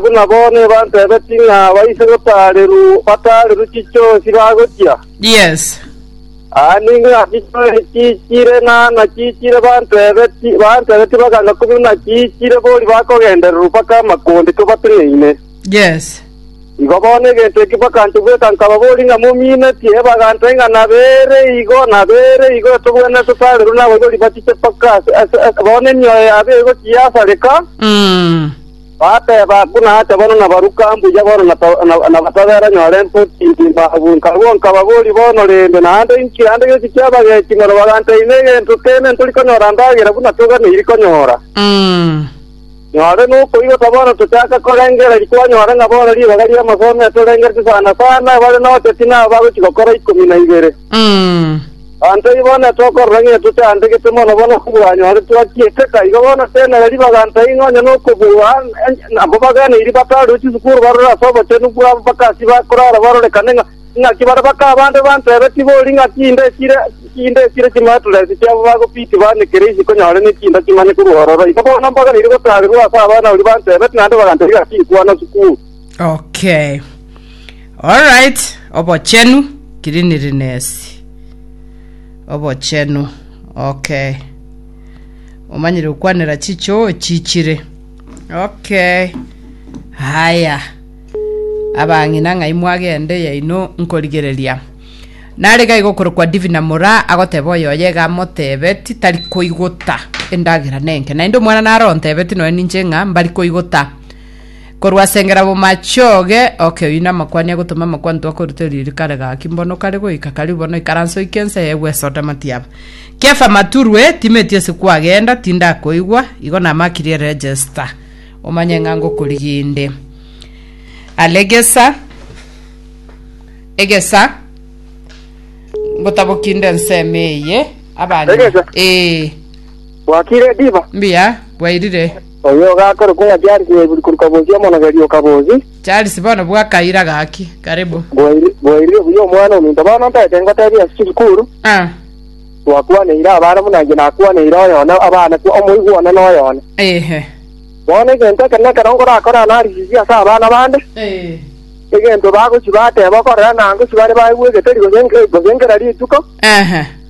buna bono ebantebeti ng'a baise gotaareru bataareru chichoosi bagochia. Yes. Aa ningo nachichoire chiichire na nachiichire bantebeti bantebeti baganga kobuna nachiichire bori bakogendererwa mpaka amakonde tobateng'eine. Yes. Igo bono egento eki bakancha gweka nkaba bori ng'a mominetie, ebagantebia ng'a nabere igo nabere igo etogwenerete totaareru naboibori bachiche mpaka ase ase ase bono emioyo yabo egochia yasareka. Mm. Bateba, Buna ache bono nabaruka mbuya bono na batabera nyore mpoti ngima abwo nkarua nkababori bono rende naende inki naende giki kiabagechi igoro baganta ime egento kene ntori konyora ndagera buna toganeiri konyora. Nyore nokoigota bono tochaka korengera rikwanyora ng'a bono ribaga ri'amasomo etorengereti sana sana bare nocheti nabo bagochi gokora ikomi na ibere. Banto igo na tokorora ng'a toteandegete mono bono kobwanyoretwe achiete ka iga bono tenena ribaga ntai ng'a onye nokobua nabo baganeiri bataarwe chisukuru barore ase obochenu bwabo bakasi bakorara barorekane ng'a ing'aki bare baka abande bantebe tibori ing'aki inde chire inde chire chimaturesi chiabo bagopiti banekere isi konyore nekinda kimanye korwa ororo igo bono mbaganeiri gotaarerwa ase abana oria bantebete naende bagantebia ing'aki inkwana sukuru Okay. All right, obochenu, cleanliness. Obochenu. Okay. Omanyire okwanera chichoo chichire. Okay. Haya. Abang'ina ng'ai mwagende yaino nkorigereria. Nare gai gokorokwa Divina Mora agoteba oyoye ga motebeti tari koigota endagera nenke. Naende omwana naro ontebeti noe ninche ng'a mbari koigota. Korwa as'engera b'omochooge oke oyio namakwani agotoma amakwanto akoruta eriogi kare gaki mbono kare goika karibu bono ikaransa oike ensa eye gwesota matiaba. Kefa Maturwe, timeti ase kwagenda, tindakoigwa, igo namakirie register omanye ng'a ngokoriginde. Aregesa, egesa, ngotabokinde ensemo eye, abanywa, Egesa? ee, Gwakire diba? mbuya, bwairire. Oyo ogakorokwa ng'a Charles yaigure korwa Kabosi omonogeri o Kabosi. Charles bono bwakaira gaki. Karibu. Bwairi- Bwairire buya omwana ominto. Bono ntaete ngotebie ase chisukuru, Ah, twakwaneire abana buna inche nakwaneire oyo one, abana kwa omoigwa one na oyo one. ehe. Bono egento ekero na ekero nkorakore analysis ase abana bande, Eh, egento bagochia bateba okorera na ngochia bare baigwegete ri gose nge- gose nkera rituko, ehe.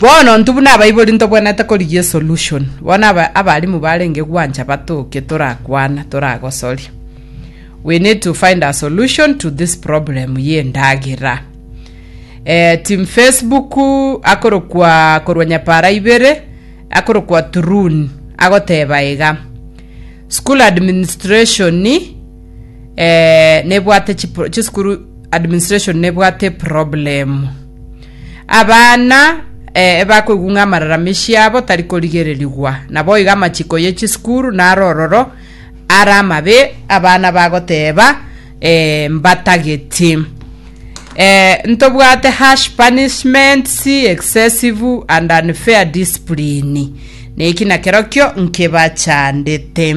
Bono ntubune abaibori ntobwenete korigia esolution. Bono aba- abarimu barenge gwancha batoke torakwana toragosoria. We need to find a solution to this problem ye ndagera. Eh, team Facebook akorokwa korwa nyapara ibere akorokwa Turun agoteba iga. School administration eh, nebwate chipro- chisukuru administration nebwate problem abana eh, ebakoigwa ng'a amararama esiabo tari korigererigwa nabo iga amachiko ye chisukuru naro ororo ara amabe abana bagoteba eh, mbatageti eh, ntobwate harsh punishments excessive and unfair discipline neki nakerokio nkebachandete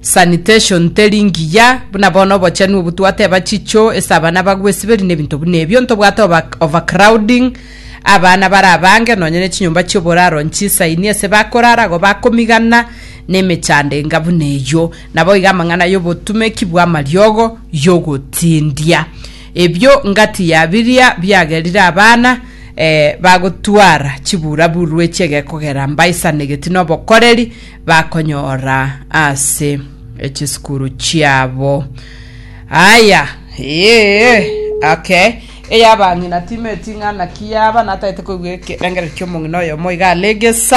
Sanitation teri ngiya, buna bono obochenu obo twateba chicho ase abana bagwesiberi nebinto buna ebio, ntobwate oba- overcrowding, abana bare abange nonya ne chinyomba chioboraro nchisaini ase bakorara igo bakomigana na emechando enga buna eyio. Nabo iga amang'ana yobotumeki bwa amariogo yogotindia. Ebio ngatiya biria biagerire abana eh, bagotwara chiburaburu echiegekogera mbaisanegeti nobokoreri, bakonyora ase chisukuru chiabo. Aya, ee, okay. Eyabang'ina timeti ng'a naki yaba natagete koigwa ekerengerero ki'omong'ina oyomo iga are gesa.